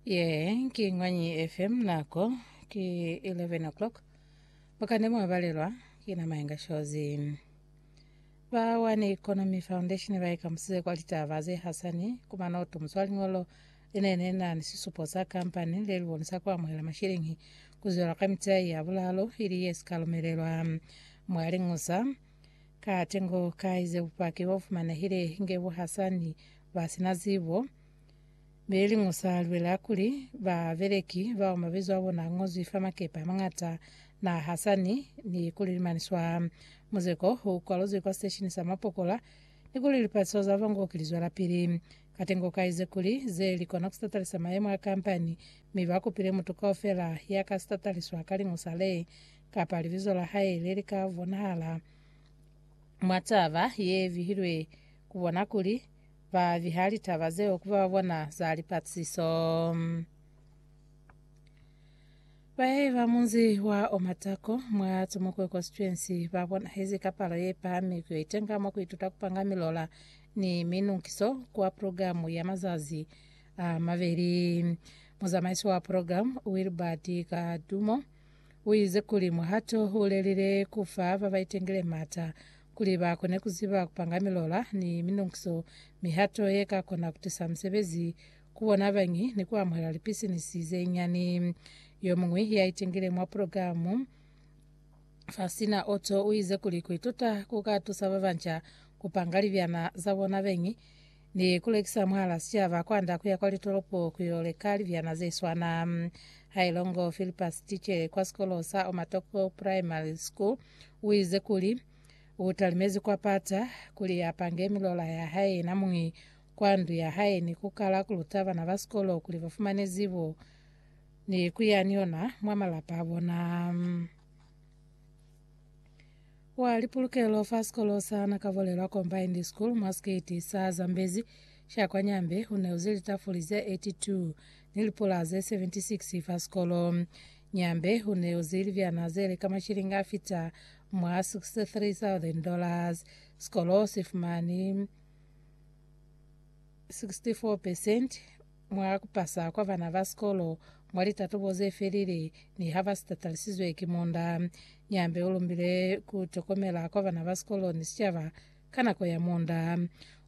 Yee, ki Ngwanyi FM nako ki 11 o'clock. Bukane mwa balelwa ki na Mayenga Shozi. Ba One Economy Foundation ba ikamusize kwa litaba ze hasani ku manoto muswa lingolo linene na ni sisupo sa kampani le libonisa ku amuhela mashilingi ku zwela ka mitai ya bulalo ili ye sika lumelelwa mwa lingusa Ka tengo kai ze bupaki bo fumanehile inge bu hasa ni ba sina zibo? Be liñwi sa lwela kuli, ba beleki bao mabizo a bona a ñozwi fa makepe a mañata na hasa ni, ni kuli limani swa. Muzeko u kwaluzwi kwa siteshini sa mapokola, ni kuli lipatiso za Van Gogh li zwelapili. Ka tengo kai ze kuli, ze li kona ku sitatalisa mayemo a kampani, mi ba kupile mutu kaufela ya ka sitataliswa ka liñwi sa le Kapa libizo la hae le li ka bonahala mwa taba ye bihilwe ku bona kuli ba biha litaba zeo ku ba bona za lipatisiso. Bahehi ba munzi wa Omatako mwa Tomokwe Constituency ba bonahezi ka palo ye pahami ku yo itenga mwa ku ituta ku panga milola ni minunkiso kwa programu ya mazazi a mabeli. Muzamaisi wa programu, Wilbard Kadumo, U ize kuli, Muhato u lelile ku fa ba ba itengile m'ata kuli ba kone ku ziba ku panga milola ni minonkiso, mihato ye ka kona ku tisa musebezi ku bona bañi ni ku amuhela lipisinisi ze nyani. Yo muñwi ya itengile mwa pulogilamu Faustina Otto u ize kuli, Ku ituta ku ka tusa ba banca ku panga libyana za bona beñi. ni ku lekisa mwala sicaba kwanda kuya kwa litolopo ku yo leka libyana ze swana. Ha il'o ngo Philippus, ticele kwa sikolo sa Omatoko Primary School, u ize kuli, U talimezi kwa pata kuli a pange milola ya hae yena muñi kwa ndu ya hae ni ku kala ku luta bana ba sikolo kuli ba fumane zibo ni ku ya ni yona mwa malapa a bona. Wa lipulukelo fa sikolo sa Nakavolelwa Combined School mwa sikiti sa Zambezi sha kwa Nyambe u neuze litafuli ze 82 ni lipula ze 76 fa sikolo. Nyambe u neuze libyana ze li ka mashilingi a fita mwa 63,000 dollars. Sikolo si fumani 64 percent Mwa kupasa kwa bana ba sikolo mwa litatubo ze felile, niha ba si tatalisizwe ki munda, Nyambe u lumbile ku tokomela kwa bana ba sikolo ni sicaba ka nako ya munda.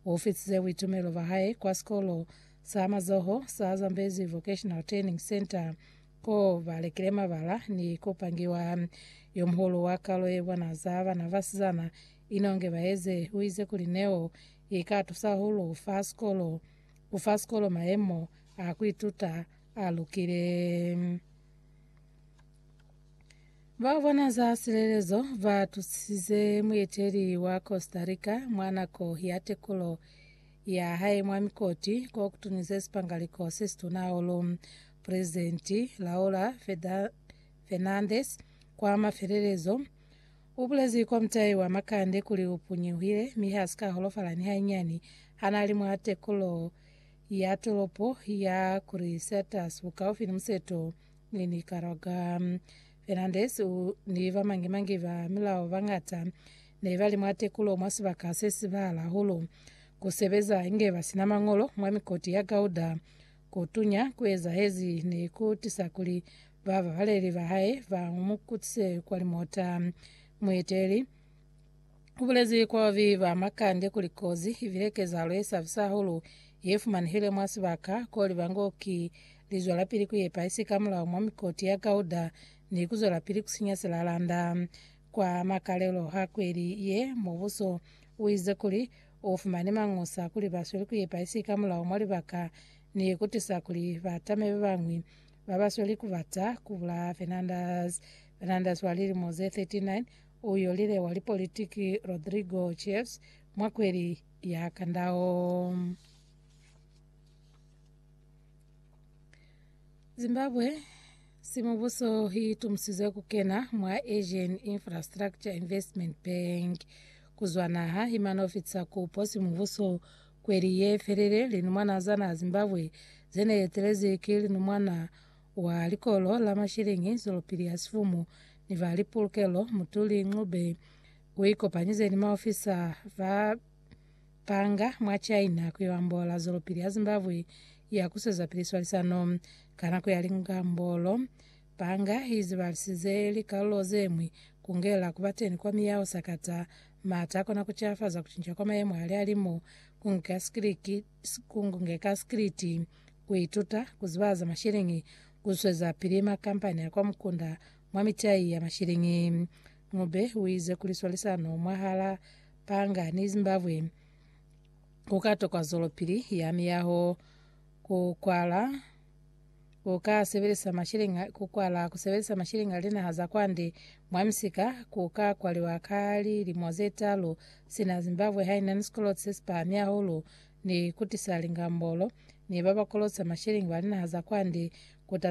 U fitize buitumelo ba hae kwa sikolo sa mazoho sa Zambezi Vocational Training Centre, ko ba lekile mabala ni ku pangiwa. Yo muhulu wa kalo ye bona za bana basizana inonge baeze, u ize kuli neo i ka tusa hahulu fa sikolo. ku fa sikolo mayemo a ku ituta a lukile. Ba bona za silelezo ba tusize mueteli wa Costa Rica mwa nako ya tekulo ya hae mwa mikoti ko kutunize sipangaliko se situna hahulu. Presidenti Laura Fernandez kwa mafelelezo U bulezi kwa mutai wa makande kuli u punyuhile mi ha si ka holofala ni hainyani ha n'a li mwa tekulo ya tolopo ya Crucetus bukaufi ni museto ni Nicaragua. Fernandez u ni ba mangi-mangi ba milao ba ñata ne ba li mwa tekulo mwa sibaka se si bala hahulu, ku sebeza inge ba si na mañolo mwa mikoti ya gauda. Ku tunya ku ezahezi ne ku tisa kuli Bababaleli ba hae ba mu kutise kwa limota. Mueteli u bulezi kwa babi ba makande kuli kozi i bile kezahalo ye sabisa hahulu ye fumanehile mwa sibaka ko liba ngo ki lizwelapili ku yepa isi ka mulao mwa mikoti ya Gauda ni ku zwelapili ku sinya silalanda. Kwa makalelo a kweli ye, mubuso u ize kuli u fumane mangusa kuli ba sweli ku yepa isi ka mulao mwa libaka ni ku tisa kuli batame ba bañwi ba ba sweli ku bata ku bulaya Fernandez. Fernandez wa lilimo ze 39 u yolile wa lipolitiki Rodrigo Chaves mwa kweli ya kandao. Zimbabwe si mubuso hi tumusizwe ku kena mwa Asian Infrastructure Investment Bank ku zwa naha hi mano fitisa kupo si mubuso Kweli ye felile, Lino mwanaa Zanaa Zimbabwe ze ne etelezi ki Lino mwanaa wa likolo la mashilingi Zwelopili ya Sifumu ni ba lipulukelo Mutuli Ncube u ikopanyize ni maofisa ba panga mwa China ku yo ambola Zwelopili ya Zimbabwe ya ku swezapili swalisano ka nako ya lingambolo Banga izibahisize likalulo zeñwi kungela kubateni kwa miyaho sakata, maata akona kucafaza kucinca kwa mayemo ali alimu, kungeka sikiliti, kuituta kuziba za mashilingi, kuswezapili makampani a kwa mukunda mwa mitai ya mashilingi. Ncube uize kuli swalisano mwahala banga ni Zimbabwe kukatokwa zwelopili ya miyaho, kukwala Uka sebelisa mashilingi a ku kwala ku sebelisa mashilingi a linaha za kwande mwa misika ku ka kwaliwa ka lilimo ze talu sina Zimbabwe ha ina ni sikoloti se si pahami hahulu ni ku tisa lingambolo, ni ba ba kolota mashilingi ba linaha za kwande ku